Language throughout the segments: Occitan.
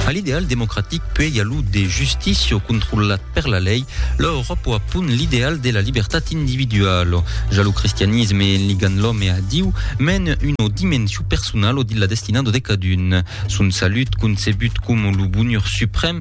A l'ideal democratic puèi a lo de justicio controlat per la lei, lo Euròpo a pun l'ideal de la libertat individualo. Ja lo cristianisme en ligant l'òme a Diu men una dimensio personalo dilla destinado de cadun. Son salut, concebut coma lo bonheur suprèm,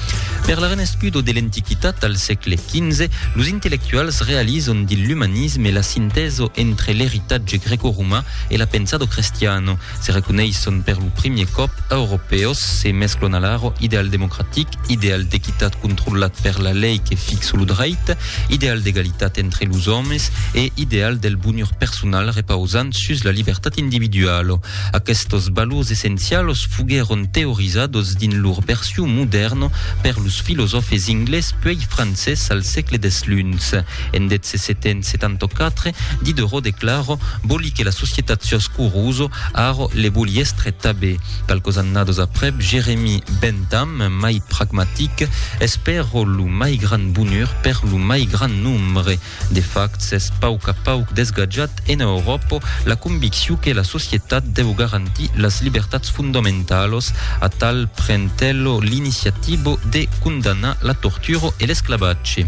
Per la renescudo de l'Antiquitat al sègle XV, los intellectuals realizon dins l'umanisme la sintèso entre l'eritatge greco-roman e la pensado crestiano, se reconeisson per lo primier còp europèos, se mesclon alaro ideal democratic, ideal d'equitat controlat per la lei que fixa lo dreit, ideal d'egalitat entre los òmes e ideal del bonhor personal repausant sus la libertat individuala. Aquestos valors essencials foguèron teorizados dins lor version modèrna per los filosòfes inglés puèi francés al sègle desluns. En 1774, Diderot declara Voli que la societat siá escurosa, ara le voli èstre tabé. Qualques annadas aprèp, Jeremy Bentham, mai pragmatic, Espèro lo mai grand bonheur per lo mai grand nombre. De fact, s'es pauc a pauc desgatjat ena Euròpa la conviccion que la societat deu garantir las libertats fondamentalos, atal pren-tello l'iniciativa de condamnar la tortura e l'esclavatge.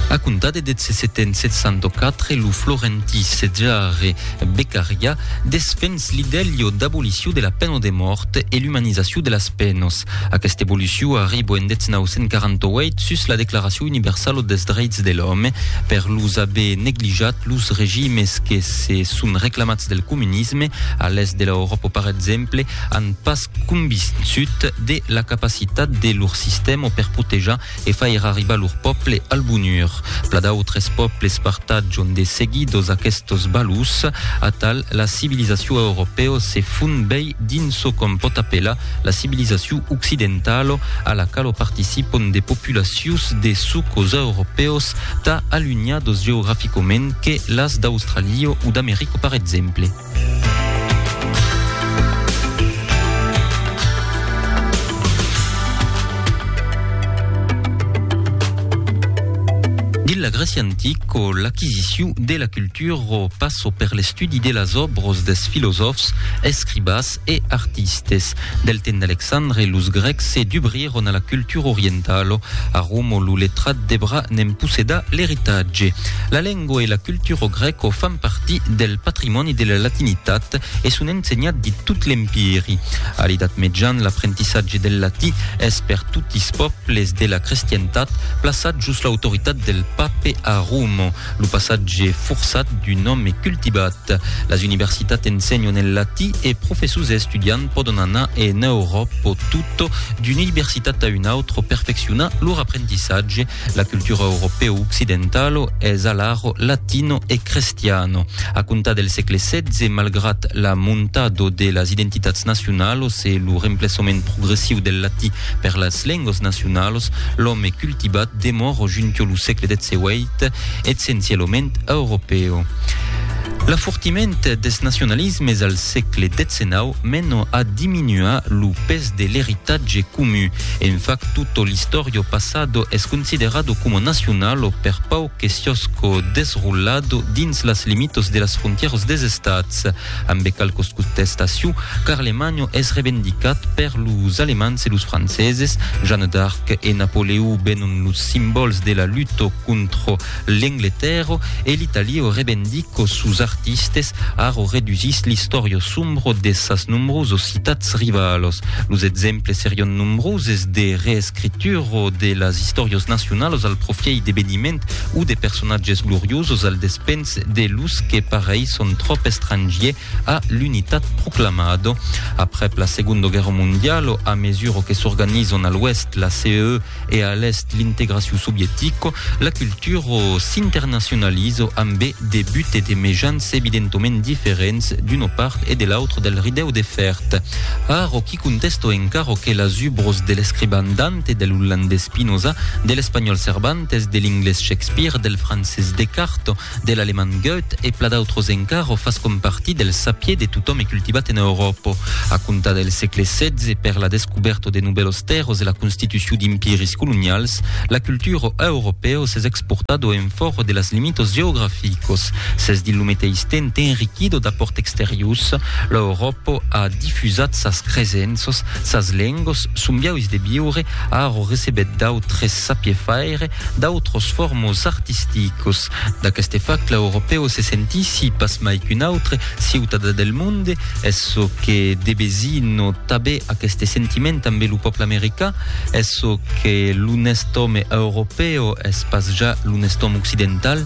A comptar de 1774, lo florentí Cejare Beccaria desfens l'idèlho d'abolicion de la pena de mòrt e l'umanizacion de las penas. Aquesta evolucion arribo en 1948 sus la Declaracion Universalo des Dreits de l'Òme per los aver neglijat los regimes que se son reclamats del comunisme a l'Èst de l'Euròpa per exemple an pas convinçut de la capacitat de lor sistèma per protejar e fair arribar lor pòble al bonhur. Pla d'autres pòbles partatjon de seguidos aquestos valors. Atal, la civilizacion europèo se fon bèi dins çò qu'òm pòt apelar la civilizacion occidentalo, a la qualo participon de populacions de sucos europèos tà alunhados geograficament que las d'Australio o d'Americo par exemple. la Grècia antic o l'aquisiciu de la cultura o passo per l'estudi de las òbros dels filosòfs, escribas, e artistes. Del temps d'Alexandre, los Grècs se dubrièron a la cultura orientala. A Roma, lo letrat devrà ne'n possedar l'eritatge. La lengua e la cultura grèca fan partir del patrimòni de la latinitat e son ensenhat dins tot l'Empiri. A l'Edat Mejan, l'aprentissatge del latí es per totis pòbles de la crestientat plaçat jos l'autoritat del pape a Roma, lo passatge forçat d'un òme cultivat. Las universitats ensenhon en latí e professors e estudiants pòdon anar en Euròpa o tot d'una universitat a una autra perfeccionar lor aprendissatge. La cultura europèo occidentalo es alaro latino e crestiano. A comptar del sègle xvi, malgrat la montado de las identitats nacionalos e lo remplaçament progressiu del latí per las lengas nacionalos, l'òme cultivat demòra junto lo sègle xvii, Est, essencialament europèu. L'afortiment des nacionalismes al sègle XIX mena a diminuar lo pes de l'eritatge comu. En fact, tutto l'istorio passado es considerado coma nacional o per pauc que siosco desrollado dins las limitas de las frontièras des estats. Ambe qualques contestacion, Carlemagno es revendicat per los Alemands e los Franceses, Jeanne d'Arc e Napoleon venon los simbòls de la luta contra l'Engletèrra e l'Italia revendica sos artistes, ara redusís l'istòria sombra de sas nombrosas citats rivalas. Los exemples serion nombroses de reescritura de las istòrias nacionalas al profièit d'eveniments o de personatges gloriosos al despenser Ets de los que pareisson tròp estrangier a l'unitat proclamado. Aprèp la Segonda Guèrra Mondialo, a mesura que s'organizon a l'oèst la CEE e a l'èst l'integracion sovietico, la cultura s'internacionalizo ambe de but e de mejans evidentoment diferents d'una part e de l'autra del ridèu de fèrt. Ara, I contèsto encara que las ubros de l'escriban Dante, de l'ollandés Spinoza, de l'espanhòl Cervantes, de l'inglés Shakespeare, del francés Descartes, de l'alemand Goethe e pla d'autros encara fascon partir del sapier de totòm e cultivat ena Euròpa. A comptar del sègle setze, per la descubèrta de novèlos tèrres e la constitucion d'impiris colonials, la cultura europèo s'es exportado en fòra de las limitas geograficas. S'es dins lo meteis temps enriquida d'apòrts exteriors. L'Euròpa. Pò a difusat sas cresenças, sas lengas, son biaus de viure, a arro recebet d'autres sapier faire, d'autros formos artisticos. D'aqueste fact l'Europèu se sentissi pas mai qu'un autre ciutadà del monde, es çò que debesinò tabé aqueste sentiment ambe lo pòple americà, es çò que l'onest òme Europèu es pas ja l'onest òme occidental.